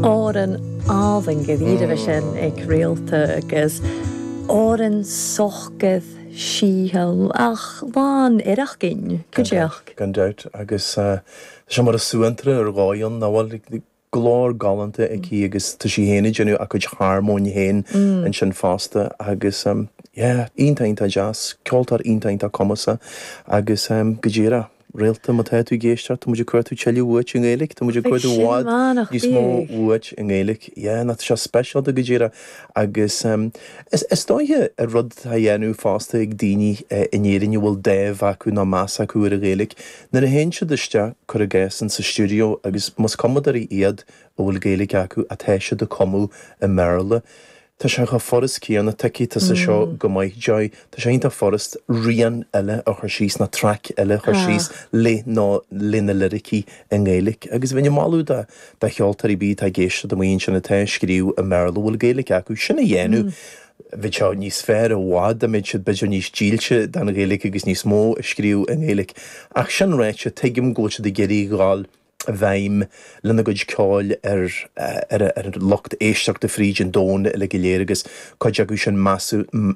Árann álainn go bhfírinne sin ag Réalta agus Árainn socair síochánta ach lán oidhreacht againn, go díreach. Gan dabht, agus tá sé mar a bheadh suantraí ar dhóigh ann nach bhfuil? Glór galánta aici agus tá sí féin ag déanamh a cuid harmóin féin ansin fosta agus, yeah, iontach, iontach deas, ceoltóir iontach, iontach cumasach agus, go díreach. Réalta, má tá tú ag éisteacht, tá muid ag gabháil a chuardú tuilleadh uait i nGaeilge, tá muid ag cuartú i bhfad níos mó uait i nGaeilge. Yeah, nach bhfuil sé speisialta go díreach agus is dóiche gur rud atá á dhéanamh fosta ag daoine in Éirinn a bhfuil dáimh acu nó meas acu ar an Ghaeilge nuair a théann siad isteach, cuir i gcás, insa stiúideo agus más cumadóirí iad a bhfuil Gaeilge acu, atá siad ag cumadh i mBéarla. Tá sé chomh furast céanna, tuigfidh tusa seo go maith, Joy. Tá sé iontach furast rian eile a chur síos, nó traic eile a chur síos le nó leis na liricí i nGaeilic. Agus bheinn ag moladh do do cheoltóirí, b'fhéidir atá ag éisteacht amuigh ansin atá ag scríobh i mBéarla a bhfuil Gaeilic acu, sin a dhéanamh. Bheadh sé níos fearr i bhfad dá mbeadh siad b'fhéidir níos dílse don Ghaeilic agus níos mó ag scríobh i nGaeilic. Ach sin ráite, tuigim go bhfuil siad ag iarraidh a dhul bhfeidhm lena gcuid ceoil ar an lucht éisteachta fríd an domhan uile go léir agus cuid acu sin, measaim,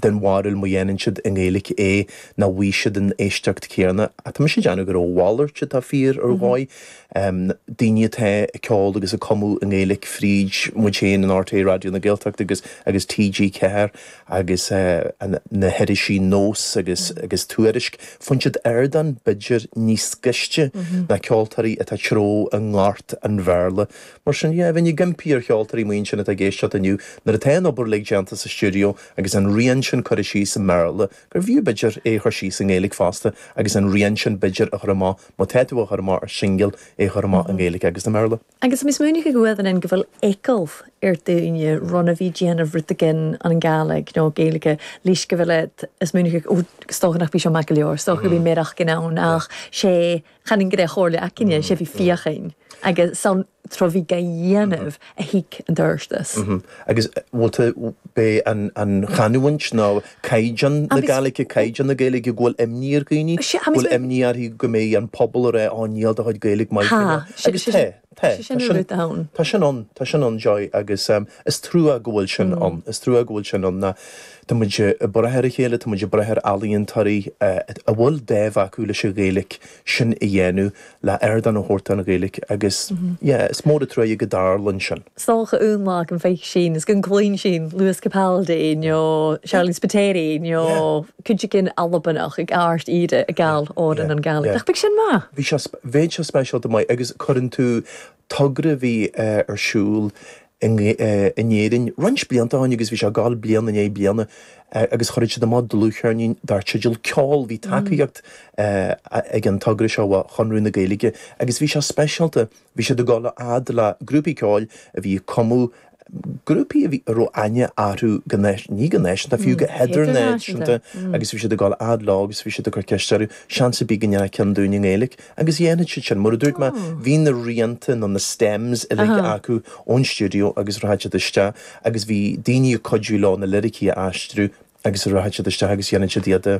den bharúil má dhéanann siad i nGaeilge é nach bhfaighidh siad an éisteacht chéanna. Tá mise ag déanamh gur a mhalairt atá fíor ar dhóigh. Daoine atá ag ceol agus ag cumadh i nGaeilge fríd muid féin in RTÉ Raidió na Gaeltachta agus TG4, agus na hirisí Nós agus agus Tuairisc, faigheann siad ardán b'fhéidir níos gaiste ná ceoltóirí atá ag treabhadh i ngort an Bhéarla. Mar sin, yeah, bheinn ag impí ar cheoltóirí amuigh ansin atá ag éisteacht inniu, nuair atá an obair uilig déanta sa stiúideo agus an rian sin curtha síos i mBéarla, gur bhfiú b'fhéidir é a chur síos i nGaeilge fosta agus an rian sin b'fhéidir a chur amach, má tá tú á chur amach ar shingil, é a chur amach i nGaeilge agus i mBéarla. Agus 's smaoineachadh gu bheil eagal air daoine ron a bhith dèanamh rud ac' ann an Gàidhlig nó Gaeilge leis gu bheil iad a' smaoineachadh ò 's dòcha nach bi seo math gu leòr, 's dòcha gum bi mearachdan ann ach 's e chanainn go raibh chomhairle againne, 's e bhith feuchainn agus 's ann tro bhith ga dhèanamh a thig an t-adhartas. Agus bhfuil tú beidh an an chanúint nó caighdeán na Gàidhlig, caighdeán na Gaeilge, go bhfuil imní ar dhaoine, go bhfuil imní orthu go mbeidh an pobal ag rá, ó níl do chuid Gaeilge maith go leor. Tá, agus tá, tá, tá sin ann, tá sin ann, tá sin ann, Joy, agus is trua go bhfuil sin ann, is trua go bhfuil sin ann nó tá muid ag brath ar a chéile, tá muid ag brath ar ealaíontóirí a bhfuil dáimh acu leis an Ghaeilge, sin a dhéanamh, le ardán a thabhairt don Ghaeilge agus yeah is mór an truaighe go dtarlaíonn sin. is dócha aon lá go bhfeic sinn is go gcluin sinn Lewis Capaldi nó Sharleen Spiteri nó yeah cuideigin Albanach ag ard íre a yeah gabháil yeah òrain an Ghaeilge yeah ach beidh sin maith. bhí sé bheadh sé speisialta maith agus cuireann tú togra a bhí ar siúl in Éirinn roinnt blianta ó shin agus bhí sé ag dul bliain i ndiaidh bliana agus chuirfeadh siad amach dlúthcheirnín dar teideal ceol. Bhí tacaíocht ag an togra seo ó Chonradh na Gaeilge agus bhí sé speisialta, bhí siad ag dul a fhad le grúpaí ceoil a bhí ag cumadh, grúpaí a bhí, a raibh aithne orthu go náis, go náisiúnta nó fiú go hidirnáisiúnta agus bhí siad ag dul a fhad leo agus bhí siad ag cur ceiste orthu, seans ar bith go ndéanfadh ceann dúinn i nGaeilic agus dhéanfadh siad sin, mar a dúirt mé, bhí na rianta nó na stems uilig acu ón stiúideo agus rachadh siad isteach agus bhí daoine ag cuidiú leo na liricí a aistriú agus rachadh siad isteach agus dhéanfadh siad iad a.